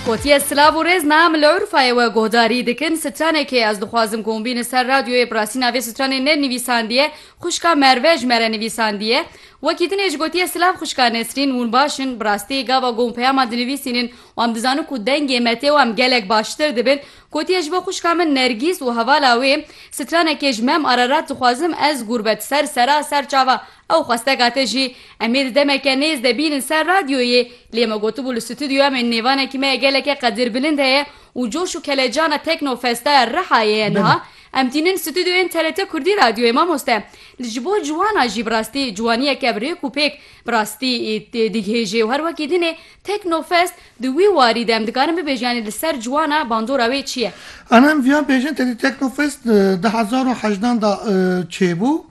Kotiye silav û rêz nam li Urfayê we guhdarî dikin. Stranekê ez dixwazim ku hûn bînin ser radyoyê bi rastî navê stranê ne nivîsandiye. Xwişka Merve ji me re nivîsandiye. Wekî din ê ji gotiye silav xwişka Nesrîn hûn baş in. Bi rastî gava ku hûn peyaman dinivîsînin û em dizanin ku dengê me tê û em gelek baştir dibin. Kotiye ji bo xwişka min Nergîs û hevala wê stranekê ji me em Ararat dixwazim ez gurbet ser sera ser çava Ew xwesteka te jî em ê di demeke nêz de bînin ser radyoyê, lê me gotibû li stûdyoya me nêvanekî me ya geleke qedirbilind heye û coş û kelecana Teknofesta ya Rihayê ye niha em tînin stûdyoyên TRT Kurdî Radyoyê Mamoste li ji bo ciwanan jî bi rastî ciwaniyeke bi rêk û pêk bi rastî digihêjê û her wekî dinê Teknofest di wî warî de em dikarin bibêjin yanî li ser ciwana bandora wê çi ye? Ana em viya bêjin tedî Teknofest di hezar û hejdan de çêbû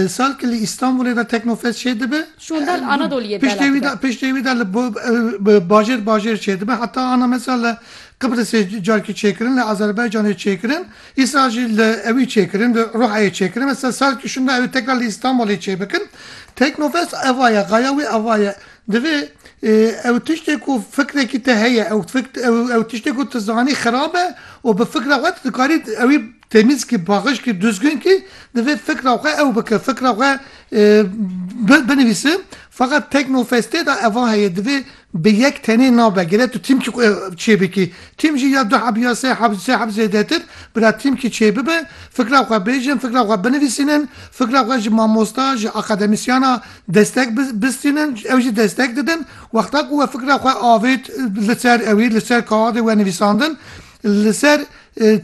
Sal ki li Îstanbulê de Teknofest çêdibe, piştê wî de li bajêr bajêr çêdibe. Heta ana mesela li Qibrisê carkî çêkirin, li Azerbaycanê çêkirin, îsal jî li ewî çêkirin, li Ruhayê çêkirin. Mesela sal ki şûnde ew tekrar li Îstanbulê çêbikin. Teknofest eva ye, gaya wî eva ye. Divê ew tiştê ku fikrekî te heye, ew tiştê ku tu zanî xirab e û bi fikra xwe tu dikarî ewî Temîzkî, Baxişkî, Duzgunkî divê fikra xwe ew bike, fikra xwe binivîse. Feqet Teknofestê de eva heye, divê bi yek tenê nabe. Gere tu tîmkî xwe çêbikî. Tîm jî ya du heb ya sê heb, sê heb zêdetir. Bira tîmkî çêbibe, fikra xwe bêjin, fikra xwe binivîsînin, fikra xwe ji mamosta, ji akademisyana destek bistînin, ew jî destek didin. Wexta ku we fikra xwe avêt li ser ewî, li ser kaadê we nivîsandin, li ser.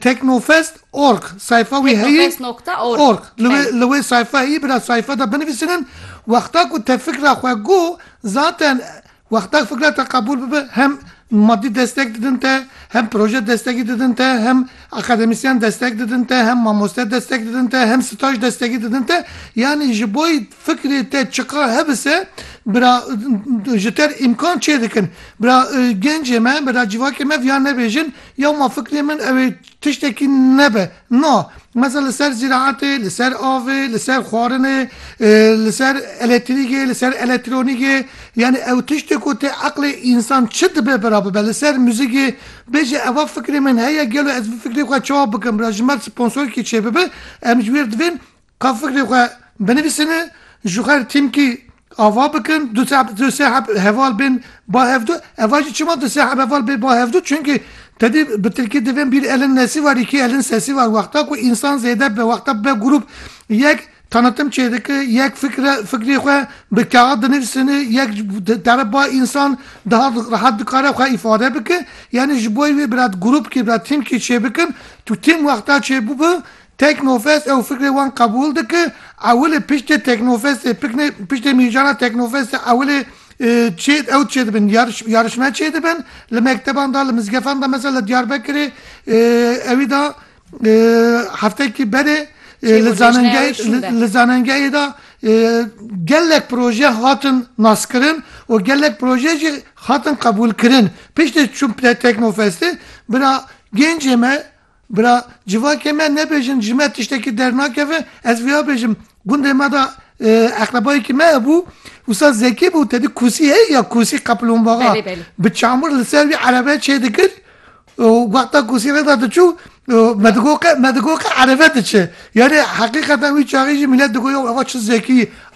Teknofest org sayfa wî heye. Teknofest nokta org. Li wê sayfa heye bi na sayfa de binivîsînin. Wexta ku te fikra xwe got zaten wexta fikra te qebûl bibe hem madî destek didin te, hem proje destekî didin te, hem akademîsyen destek didin te, hem mamoste destek didin te, hem staj destekî didin te. Yanî ji bo Fikrê te çiqar hebise bira ji te re îmkan çêdikin. Bira gencê me, bira civakê me viya nebêjin ya ma fikrê min ew ê tiştekî nebe. Na. Mesela li ser zîraetê, li ser avê, li ser xwarinê, li ser eletrîgê, li ser elektronîgê yanî ew tiştê ku tê eqlê însan çi dibe bira bibe. Li ser muzîgê bêje eva fikrê min heye gelo ez vî fikrê xwe çawa bikim. Bira ji me re sponsorkî çêbibe em ji wê re divên Ka fikrê xwe binivîsin û ji xwe re tîmkî ava bikin, du seh du seh heb heval bên ba hevdu. Eva jî çima du seh heb heval bê ba hevdu? Çimkî te dî bi tilkî divên bîr elin nesî war îkî elin sesî war. Wexta ku însan zêde be, wexta be grûp yek tanitim çêdike, yek fikre fikrê xwe bi kaxid dinivîsin û yek di dere ba însan daha rehet dikare xwe îfade bike. Yanî ji bo wê bi re grûpkî bi re tîmkî çêbikin, tu tîm wexta çêbû bi Teknofest ew fikrê wan qebûl dike, ewilê piştê Teknofestê pikne piştê mîjana Teknofestê ewilê çê ew çê dibin yarış yarışme çê dibin li mekteban da li mizgefan da mesela li Diyarbekirê ewî da heftekî berê Çê li gorî jina wê zanengehê şîn be. li zanengehê da gelek proje hatin naskirin û gelek proje jî hatin qebûlkirin. Piştê çûn Teknofestê bira gencê me Bira, civakê me nebêjin ji me tiştekî dernakeve, ez vêya bêjim, gundê me de eqrebayekî me hebû, wisa Zekî bû, te di kûsî heye ya kûsî qeplûnbaxa, bi çamur li ser wî erebe çêdikir û wexta kûsî re de diçû me digot qe me digot qe erebe diçe. Yanî heqîqeten wî çaxê jî mîlet digot ya eva çi Zekî